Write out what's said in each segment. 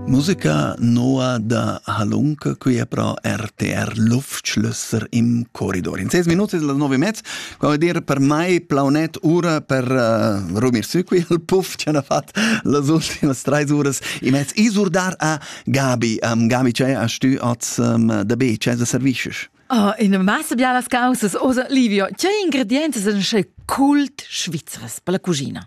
Musica noa da Halunke, qui è pro RTR Luftschlösser im Korridor. In ses minuti della nove mezz, qua vuol dire per mai plaunet ura per uh, rumir su qui al puff che hanno fatto las ultimas tre uras i mezz isurdar a Gabi. Um, Gabi, c'è a stu oz um, da B, c'è da servicius? Oh, in massa bialas causas, osa Livio, c'è ingredienti sen sche cult svizres per la cucina?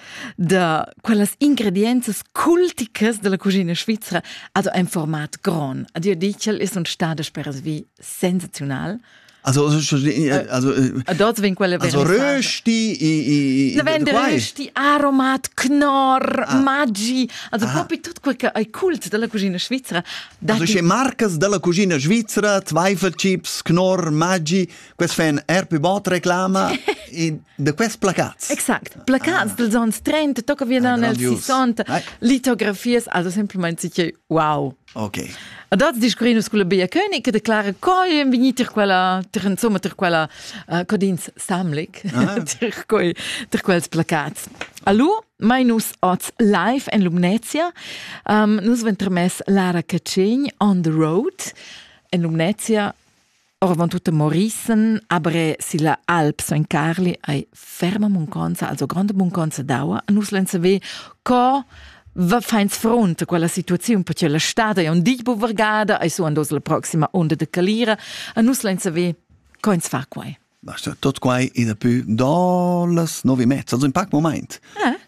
da quellas ingredienzas culticas della cucina svizra ad ein format gron. Ad dir dichel ist un stade sperasvi sensaziunal. Also also dort vin quella also rösti i i vin rösti aromat knorr ah. maggi also ah. propi tot quel che ei cult della cucina svizra also che marcas della cucina svizra zweifel chips knorr maggi quest fan er più bot reclama da quels placats. Exact. Placats ah. dels ans 30, tocca via da nel 60, litografias, also semplicemente dice wow. Ok. Ad az discurrinus con la Bea König che declara coi en venir tir quella tir insomma tir quella uh, codins Samlik ah. tir quei tir quels placats. Allo Minus oz live en Lumnezia. Um, nus ventermess Lara Cacin on the road en Lumnezia Oravant tutto Morissen, aber silla Alp San Carli ei ferma munconza, also grande munconza d'aua. Nus len saver co va feins front a quella situaziun, perché la stada è un di buvergada, e su andos la proxima onda de calira, a nus len saver co ins fa quai. Ma tot quai in a pü da las nove e mezza, also in pac moment. Eh?